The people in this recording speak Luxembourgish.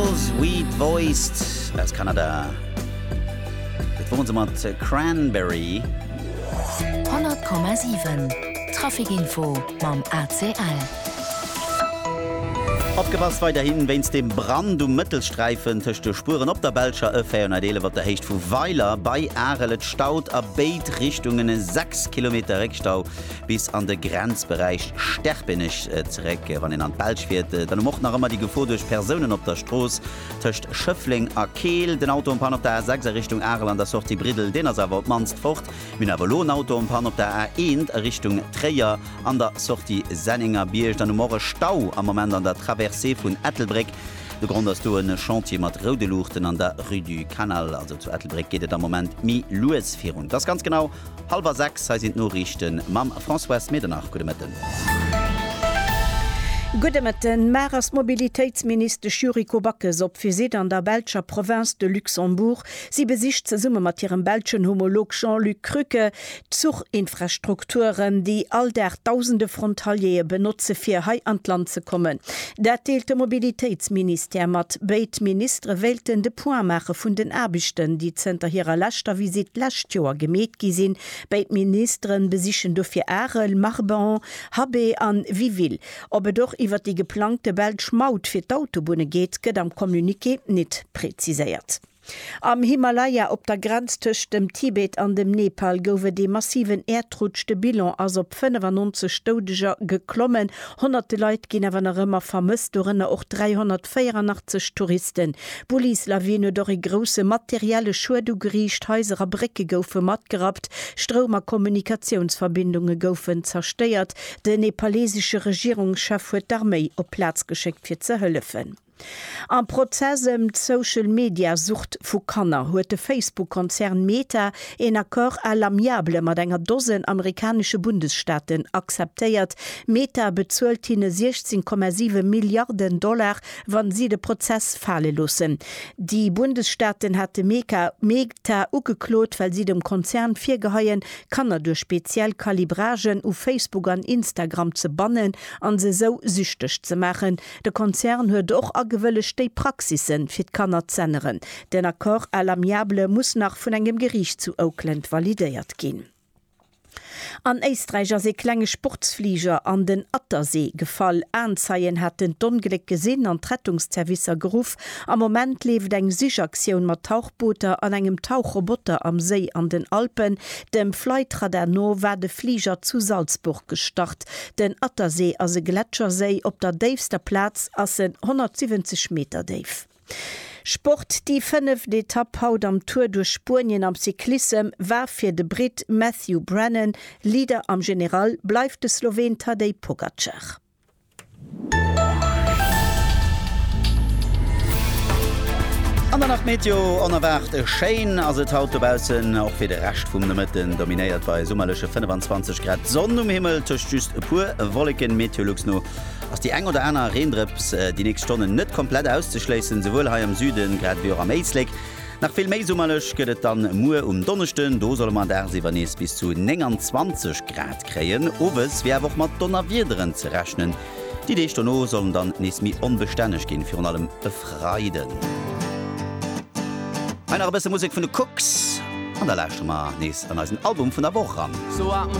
Girls Weed Voiced aus Kanada. Dat woren se mat Cranberry. 100,7 Trafic Info mam ACL. Opgepasst weiderhin wéinst dem Brand um Mëttelsträifen tëscht de Spueren op der Belscher E 411 op der Héicht vu Weiler bei Arel. Et staut a béid Richtungen e 6 Kilometer Réckstau. bis an de Grenzberäich Sterpenech zeréck. Wann een an d'Belsch fiert, dann hu mer och nach ëmmer déi Gefor duerch Persounen op der Strooss tëscht Schëffleng a Keel. Den Auto en panne op der A6 a Richtung Arel an der Sortie Briddel, deen ass awer op d'mannst fort. Mir hunn awer elo en Auto en panne op der A1 a Richtung Tréier an der Sortie Sennengerbierg. Dann hu mer och e Stau am Moment an der Traversée vun Ettelbréck. De Grond ass do e Chantier mat roude Luuchten an der Rue du Canal. Also zu Ettelbréck geet et am Moment méi lues virun. Dass ganz genau Halwer sechs, hei sinn d'Noriichten mam Françoise Medernach. Gudde Mëtten. Gudde Mëtten. Mar ass d'Mobilitéitsministesch Yuriko Backes op Visitt an der belscher Province de Luxembourg. Si besicht zesumme mat hirem belschen Homolog Jean-Luc Krücke d'Zuchinfrastrukturen, déi all Dag dausende Frontaliere benotze fir hei an d'Land ze kommen. Dat deelt de Mobilitéitsministère mat. Béid Ministere wéilten de Point maache vun den Aarbechten, déi zënter hirer leschter Visitt d'lescht Joer gemeet gi sinn. Béid Ministere besichen dofir Arel, Marbahn, Habé an Wiville. Ob et och iwwert déi geplangte belsch Maut fir d'Autobunne geet, gëtt am Communiqué nit preziséiert. Am Himalaya op der Grenz tëscht dem Tibet an dem Nepal gouf et ee massiven Äerdrutsch. De Bilan ass op 95 Doudeger geklommen. Honnerte Leit ginn awer nach ëmmer vermësst, dorënner och 384 Touristen. D'Bullislawin huet och ee grousse materielle Schued ugeriicht, Haiser a Brécke goufe matgerappt, Stroum a Kommunikatiounsverbindunge goufen zerstéiert. Den nepalesesche Regierungschef huet d'Arméi op d'Plaz geschéckt fir ze hëllefen. Am Prozess ëm d'Social-Media-Sucht vu Kanner huet de Facebook-Konzern Meta een Accord à l'amiable mat enger Dosen amerikanesche Bundesstaaten akzeptéiert. Meta bezuelt hinne 16,7 Milliarden Dollar, wa si de Prozess fale loossen. Déi Bundesstaaten hate Meta ugeklot, well si dem Konzern virgeheien, Kanner duerch speziell Calibragen u Facebook an Instagram ze bannen a se esou süchteg ze maachen. De Konzern huet och agewëllegt déi Praxisse fir d'Kanner z'änneren. Den Accord à l'amiable muss nach vun engem Geriicht zu Oakland validéiert ginn. An Éisträich ass ee klenge Sportsfliger an den Attersee gefall. Aenzeien haten d'Ongléck gesinn an d'Rettungszervicer geruff. Am Moment leeft eng Sichaktioun mat Tauchbooter an engem Tauchroboter am Séi an den Alpen. Dem Flightradar no war de Fliger zu Salzburg gestart. Ëmwelt. Den Attersee ass e Gletscherséi, op der déifster Plaz ass en 170 Meter déif. Sport Déi fënneft Etapp haut am Tour duerch Spuenien am Cyclissem war fir de Britt Matthew Brennan. Leader am General bleift de Sloween Tadej Pogacar. An der Nacht Meteo, Onerwaart schéin ass et haut dobaussen, och fir de Rescht vum Nomëtten. Dominéiert bei summerleche 25 Grad d'Sonn um Himmel, tëscht just e puer Wolleken. Meteolux no ass déi eng oder aner Reendrëps déi nächst Stonnen net komplett auszeschléissen, souwuel hei am Süden grad ewéi och am Éislek. Nach vill méi summerlech gëtt et dann muer um Donneschden. Do solle mer dagsiwwer nees bis zu 29 Grad kréien. Owes wier awer och mat Donnerwiederen ze rechnen. Déi Deeg dono sollen dann nees méi onbestänneg ginn, virun allem e Freiden. Hei nach e bësse Musek vun de Cooks an da lauschtere mer nees an eisen Album vun der Woch eran.